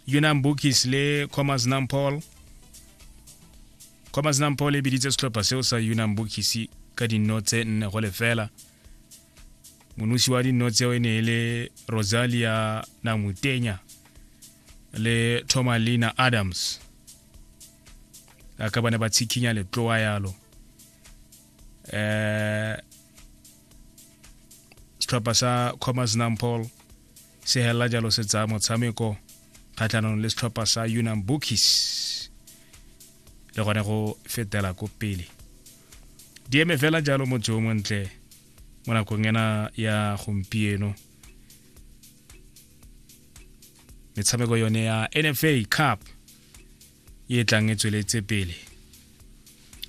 unam bookies le commerce nampol commerce nampol e biditse setlhopha seo sa unam bookies ka dinno tse nne go lefela monosi wa dinno tseo e ne e le rosalia namutenya le thomalina adams a ka bane ba tshikinya letloa yalo um setlhopha sa commerce nampol se helela jalo se tsaya motshameko kgatlhanong le setlhopha sa unam bookies le gone go fetela ko pele di eme fela jalo motse o montle mo nakong ena ya gompieno metshameko yone ya nfa cup e tlang e tsweletse pele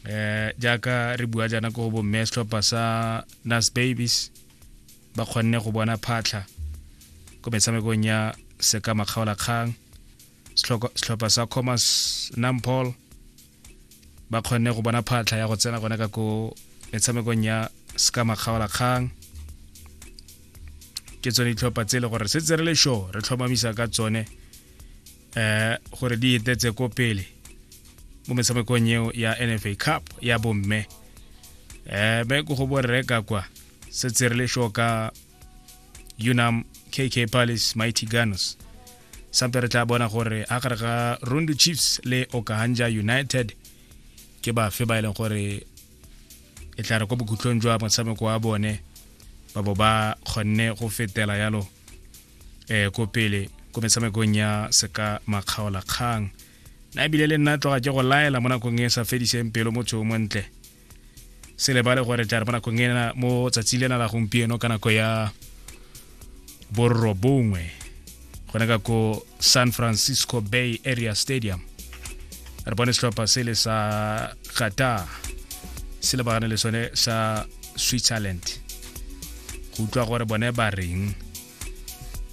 eh jaaka re bua jana ko bo mme setlhopha sa nas babies ba kgonne go bona phatlha ko metshamekong ya seka makgaolakgang setlhopha sa commerce nampol ba kgonne go bona phatlha ya go tsena gone ka ko metshamekong ya seka makgaolakgang ke tsone ditlhopha tse e le gore se tse re le show re tlhomamisa ka tsone eh gore di etetse ko pele mo metshamekong eo ya nfa cup ya bomme eh be ko go borre ka kwa se tserele sho ka unam kk palace mighty gunners sampe re tla bona gore a gare ga rundu chiefs le okahanja united ke bafe ba e leng gore e tla re kwa bokhutlong jwa motshameko wa bone ba bo ba kgonne go fetela yalo eh ko pele ko metshamekong ya seka makgaola kgang na ebile le nna tloga ke go laela mo nakong e sa fediseng pelo mo tseo montle se lebale gore tla re mo nakong ena mo tsatsi lena la gompieno ka nako ya borobongwe gone ka ko san francisco bay area stadium re bone setlhopha sele sa qatar se lebagane le sone sa switzerland go utlwa gore bone ba reng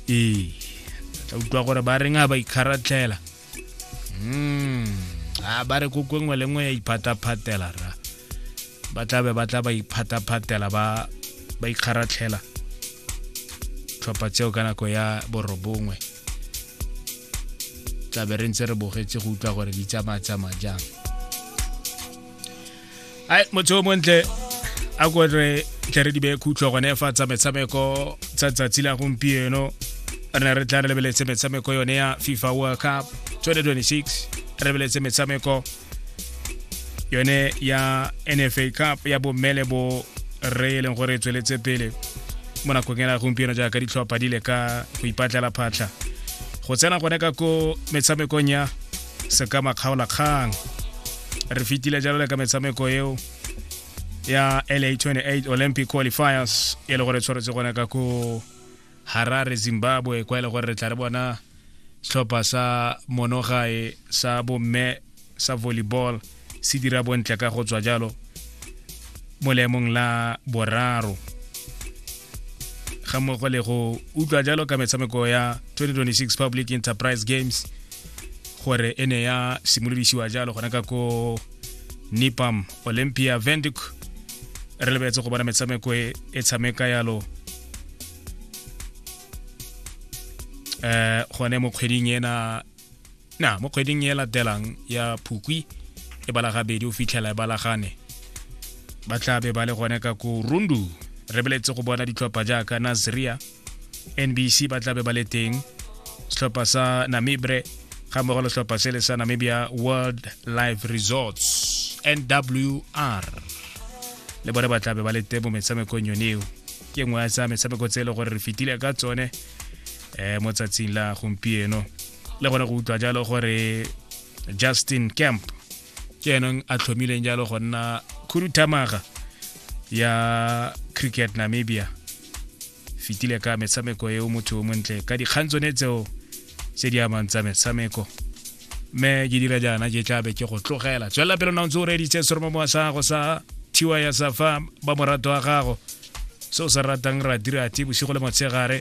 ee tla utlwa gore ba reng a ba ikgaratlhela mm. a ba re ko kongwe le nngwe ya iphataphatela ra ba tla be ba tla ba iphataphatela ba ba ikgaratlhela tlhopha tseo ka nako ya borobongwe tlabe re ntse re bogetse go utlwa gore di tsamaya tsamaya jang ai motho o montle a ko re tle re di beye khutlho gone fa tsa metshameko tsa tsatsi la gompieno re ne re tla re lebeletse metshameko yone ya fifa world cup 2026 re lebeletse metshameko yone ya nfa cup ya bomme le bo re e leng gore e tsweletse pele mo nakong ena gompieno jaaka ditlhopha di le ka go ipatlela phatlha go tsena gone ka ko metshamekong ya seka makgaolakgang re fetile jalo le ka metshameko eo ya la 28 olympic qualifiers e le gore tshwanetse gone ka ko Harare, Zimbabwe, kwa e le gore re tla re bona setlhopha sa monogae sa bomme sa volleyball se dira bontle ka go tswa jalo mo leemong la boraro ga mmogo le go utlwa jalo ka metshameko ya 2026 public enterprise games gore e ne ya simolodisiwa jalo gona ka ko nipam olympia venduc re lebetse go bona metshameko e tshameka yalo eh gone mo kgweding ena na mo kgweding e latelang ya phukwi e balagabedi o fitlhela e balagane ba tla be ba le gone ka ko rundu re beletse go bona ditlhopha jaaka naziria nbc ba tla be ba le teng setlhopha sa namibre ga mmogo le setlhopha se le sa namibia world life resorts nwr le bone ba tlabe ba le teng mo metshamekong yone eo ke nngwe ya tsa metshameko tse e le gore re fetile ka tsone um mo tsatsing la gompieno le gone go utlwa jalo gore justin camp ke eneng a tlhomileng jalo go nna khuduthamaga ya cricket namibia fetile ka metshameko eo motho o montle ka dikgang tsone tseo tse di amang tsa metshameko mme ke dira jaana ke tlabe ke go tlogela tswelela pele na o ntse o reditse seromo mowa sa gago sa thiwa ya sa fa ba morato wa gago se o se ratang ra dirati bosigo le motshegare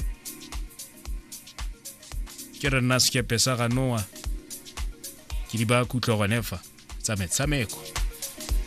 ke re nna sekepe sa ga noa ke di ba kutlwa gone fa tsa metshameko